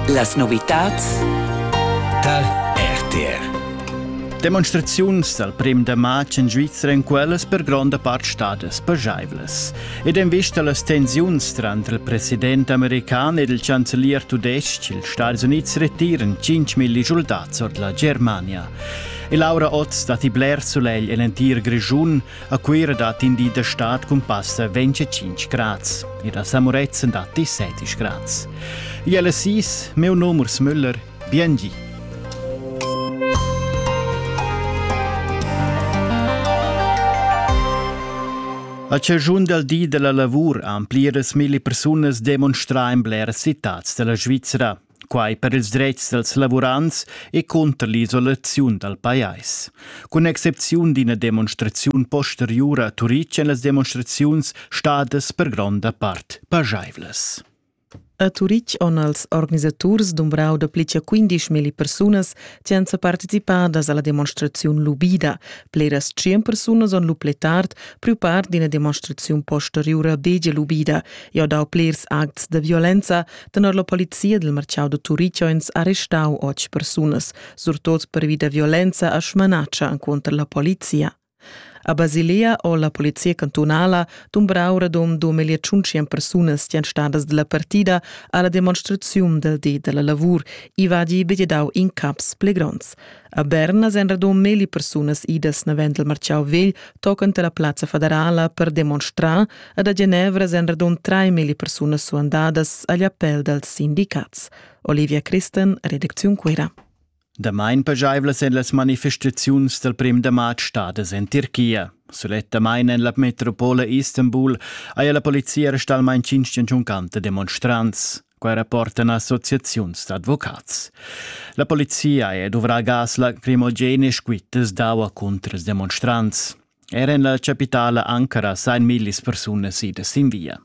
Las novitads dal RTR Demonstraziuns dal prim da matg en Svizra en quellas per gronda part stadas pajaivlas. Ed en vista a las tensiuns tranter il president american ed il chancelier tudestg, ils Stati Unids retiran 5.000 soldats ord la Germania. E Laura Otz datti bler sulegl en l'entir Grischun. A Cuira dat in di da stad cun passa 25 grads. Ir a Samuretzen datti 70 grads. Iel Assis, meu nom Urs Müller, biengi. A ciagiun dal di della lavur han pliras milli persunas demonstrà in blera citads della Svizzera. quai per ils dretgs dals lavurants e cunter l'isolaziun dal pajais. Cun excepziun d'ina demonstraziun posteriura a Turitg èn las demonstraziuns stadas per gronda part pajaivlas. A Turitg on els organisaturs dumbrau da pli che 15.000 persunas che han participadas alla demonstraziun lubida. Pleras 100 persunas on lu pli tard priu part d'ina demonstraziun posteriura begia lubida e ho dau plers acts da violenza, Tenor la polizia del marciau da Turichoins ha restau otg persunas, surtot pervi da violenza a schmanatscha contro la polizia. A Basilea o la polizia cantunala dumbrau radund 2500 persunas tian stadas della partida alla demonstraziun del di della lavur, i va di bededau in caps pli gronds. A Berna sen radund meli persunas idas navent del marciau vegl toccant la plaza federala per demonstrar, Ed a Genevra èn radund 3.000 persunas suandadas agl appell dals sindicats. Olivia Christen, redacziun Cuira. Damain pajaivlas èn las manifestaziuns dal prim da marz stadas en Tirchia. Sulettamain en la metropola Istanbul haja la polizia restà almain cinc giunchanta demonstrants. Quai rapportan associaziuns d'advocats. La polizia è duvrà gas lacrimogene squittas d'aua contras demonstrants. Er en la chapitala Ankara sain millis persunas idas sin via.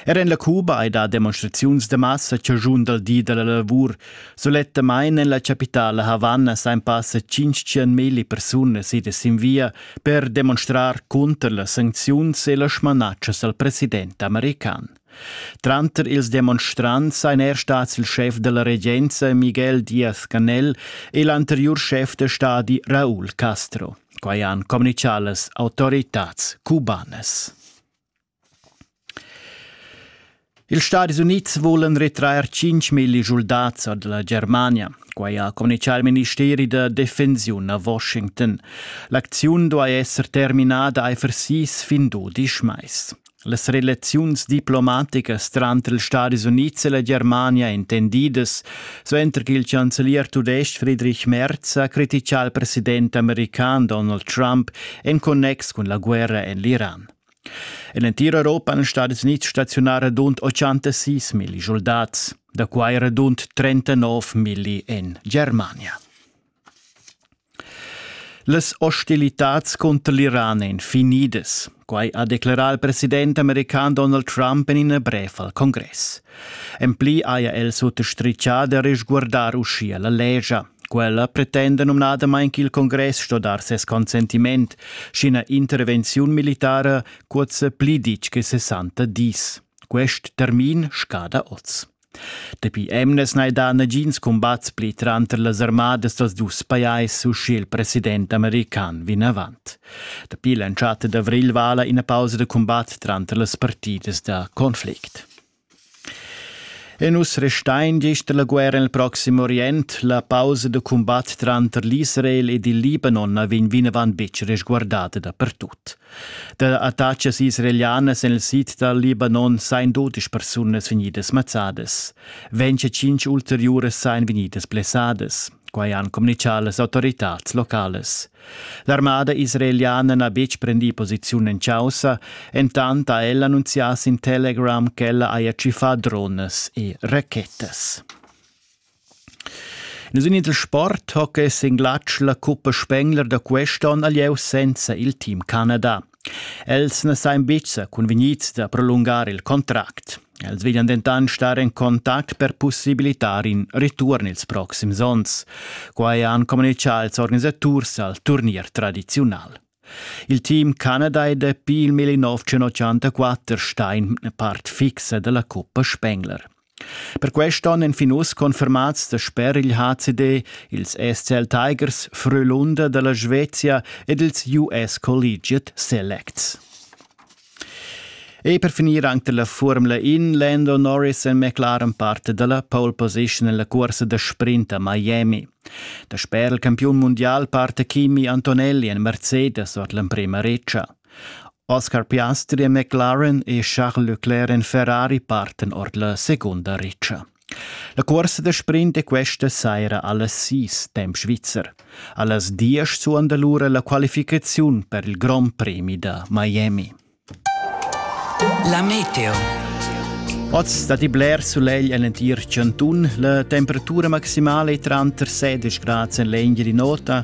Er en la Cuba hai dà demonstraziuns da massa chaschun dal di da la lavur. Sulettamain en la chapitala Havanna sain passa 500.000 persunas idas sin via per demonstrar cunter las sancziuns e las smanatschas al president american. Tranter ils demonstrants seien er stats il chef della regenza Miguel Diaz-Canel e l'anterior chef de stadi Raúl Castro. Quai han communitgà las autoritads cubanas. Ils Stadis Unids vulan retrair 5.000 schuldats ad la Germania. Quai ha communitgà il ministeri da defensiun a Washington. L'acziun duai esser terminada aifer sis fin dudisch mais. Las relaziuns diplomaticas tranter ils Stadis Unids e la Germania intendidas suenter ch'il chancelier tudestg Friedrich Merz ha criticà il president american Donald Trump en connex cun la guerra en l'Iran. En l'entir Europa han Stadis Unids staziunà radund 86.000 soldats, da quai radund 39.000 en Germania. Las hostilitads cunter l'Iran ein finidas. Quei ha declarà il president american Donald Trump en ina brev al congress. En pli haja el suttostrichà da resguardar uschia la legia. Quella pretenda numnadamain ch'il congress sto dar ses consentiment, sch'ina intervenziun militara cuozza pli ditg che 60 dis. Quest termin scada oz. Dapi emnas n'hai dà nagins cumbats pli tranter las armadas dals dus pajais uschè il president american vinavant. Dapi l'entschatta d'avrigl vala ina pausa da cumbat tranter las partidas da conflict. E nus restain gist la guerra nel Proxim Orient. La pausa da cumbat tranter l'Israel ed il Libanon na vegn vinavant betg resguardada dapertut. Da attachas israelianas en il sid dal Libanon sain dodisch persunas vegnidas mazzadas. Venche cinc ulteriuras sain vegnidas blessadas. Quai han communichà las autoritads locales. L'armada israeliana n'ha betg prendì posiziun en chaussa, entant ha ella annunzià sin Telegram ch'ella haja tschiffà dronas e rachettas. Nus in il sport hoca es in glatsch la cuppa Spengler da quest'on al lieu senza il team Canada. Els na sain bizza convegnits da prolungar il contract. Els veglian dentan star in contact per possibilitar in return ils proxims ons. Quai han communichà ils organisaturs al turnier tradiziunal. Il team Canada è dapi il 1984 stein part fixa della Cuppa Spengler. Per quest onn èn fin uss confermats dasper il HCD ils SCL Tigers Frölunda da la Svezia ed ils US Collegiate Selects. E per finir anche dalla Formula In, Lando Norris è McLaren parte dalla pole position nella corsa da sprint a Miami. Dasper il campiun mondial parte Kimi Antonelli en Mercedes ord l'emprema reccia. Oscar Piastri e McLaren e Charles Leclerc en Ferrari parten ord la segunda ritscha. La cuorsa da sprint è questa saira allas sis temp svizzer. Allas diesch suonda lura la qualificaziun per il Grand Premi da Miami. La meteo. Oz dat i bler sulegl en l'entir Cantun. La temperatura maximale è tranter 16 gradi en l'engere di nota